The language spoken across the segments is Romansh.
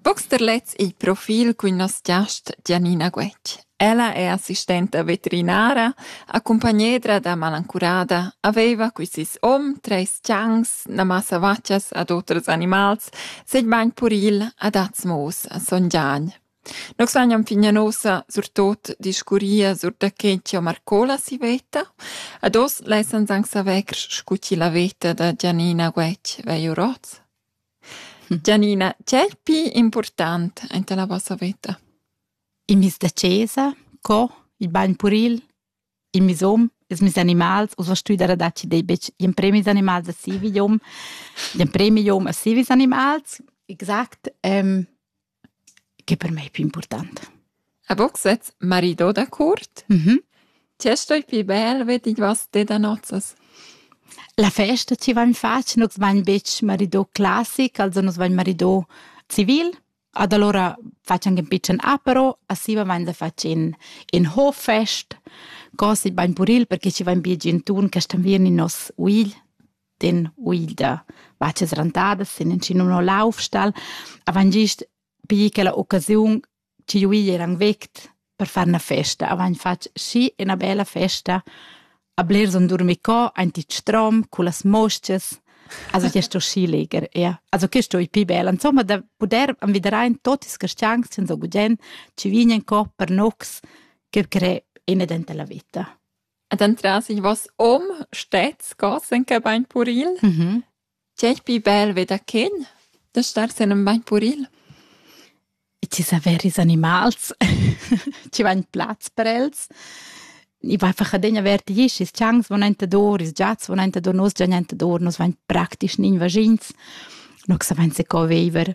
Box da lez il profil cun nos giast Gianina Guetg. Ella è assistenta veterinara, accumpagnedra da malancurada, aveva qui sis om, treis ciancs, na massa vaccias ad oters animals, segn bagn puril ad Atzmos a Son Gian. Nus lagnan fin ün ussa surtot discurrir sur da che chi ho marcò la si veta. Ad hoz lessans anc savair scu chi la veta da Gianina Guetg vegl our hoz. Gianina, che è il pü important enta la vossa veta? Il mis da chesa, co, il bagn puril, il misom, ils mis animals, ussa stüi da dar chi dei betg ün premi ils animals a sivi jom, ün premi jom a sivis animals. Exact, ehm che per mei pli important. A boxet marido da curt? Mm -hmm. Tge stoi pli bel vedi vas te da nozzas? La festa ci va in faccia, nus vain betg marido classic, also nus vain marido civil, ad allora facciamo un piccolo apero, assiva vain da facciamo in hoffest, così vain puril perché ci vain più gentun che stan vien in nos uigl. den uida vaccia srantada sin in chin uno laufstall avant gist pi quella occasiun chi uigl eran vect per far una festa avant fatg schi ina bella festa a blers on durmi co anti strom cu las mosches also che sto schi leger ja also che sto i pi bella insomma da puder anviderain totis castiangs sen so gudgen ci vignen co per nox che cre ina denta la vita Ed entras ich was om stets gassen che bain puril. Mhm. Tg'è pi bel ve da chen da star sen en bain puril? I ti saver ils animals, ti va in plaz per els. I va einfach adegna vertig isch, ils tschancs van entador, ils giats van entador, nos gian entador, nos vain praktisch nin vagins. No sa vain se co veiver.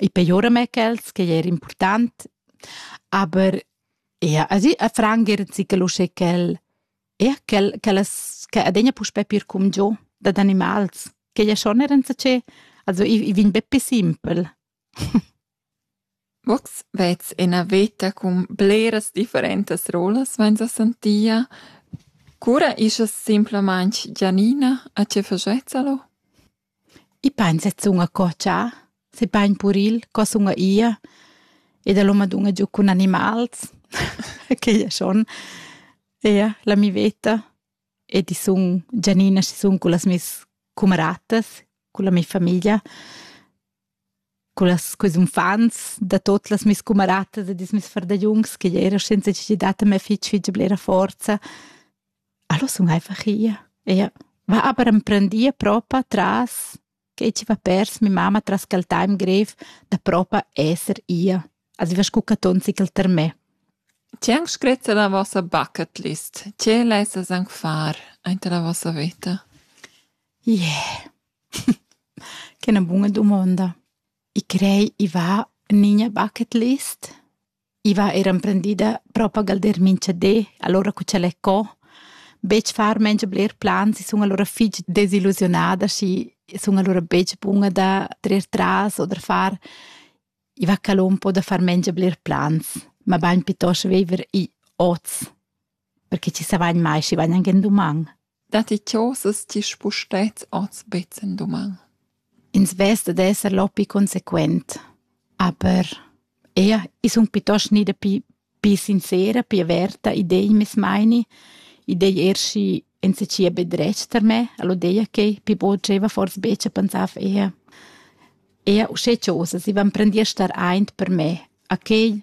I pejora mê quels ch'ei er important, aber ja, also a frangier zichel uschè ch'el ja, ch'el ch'ellas che adegna puspè pir cumgiò dad animals, ch'ei ja schon er enzatgé, also i i vegn be pi simpel. Vox vez ina veta cun bleras differentas rolas vains a sentia. Cura ischa simplamaing Gianina a che fagetsa lo? I pain sezun a cotschar, se pain puril co sun ia ed el ho madunna giu cun animals quei è schon ia la mi veta ed i sun Gianina chi sun cullas meis cumaratas, culla mia famiglia Cullas, quels unfants da tot las meis cumaratas e dis meis fardagliuns ch'igl era senza chi datta mei fitg fitg blera forza, allo sun einfach ia. Ea va aber emprendia propa tras quei chi va pers mia mamma tras quel time grev da propa esser ia. Also va scu caton sicl ter me. Tg'è anc scretta la vossa bucket list? Tg'è lessas anc far aint la vossa veta? Ie. Yeah. Che è 'na buna dumonda. I crei i va en iina bucket list. I va eir emprendida propagal der minchadi, alura cu ch'el è co. Betg far mengia bler plans, i sun alura fich desillusiunada, schi sun alura betg buna da trer tras o da far. I va ca l'on po da far mengia bler plans, mabain pietost viver i oz. perché chi savain mai schi vain anc ün duman. Datti chosas chi spustet oz bets ün duman? Ins vesta d'esser loppi consequent, aber ea, i sun piuttost gnida pi, pi sincera, pi averta, idei meis meini, idei er schi enseccia be dretg tar me, all'odeia che pi bod gieva fors betg a pensar auf Ehe. Ehe uschè chosas, i van prendì a star aint per me, a quei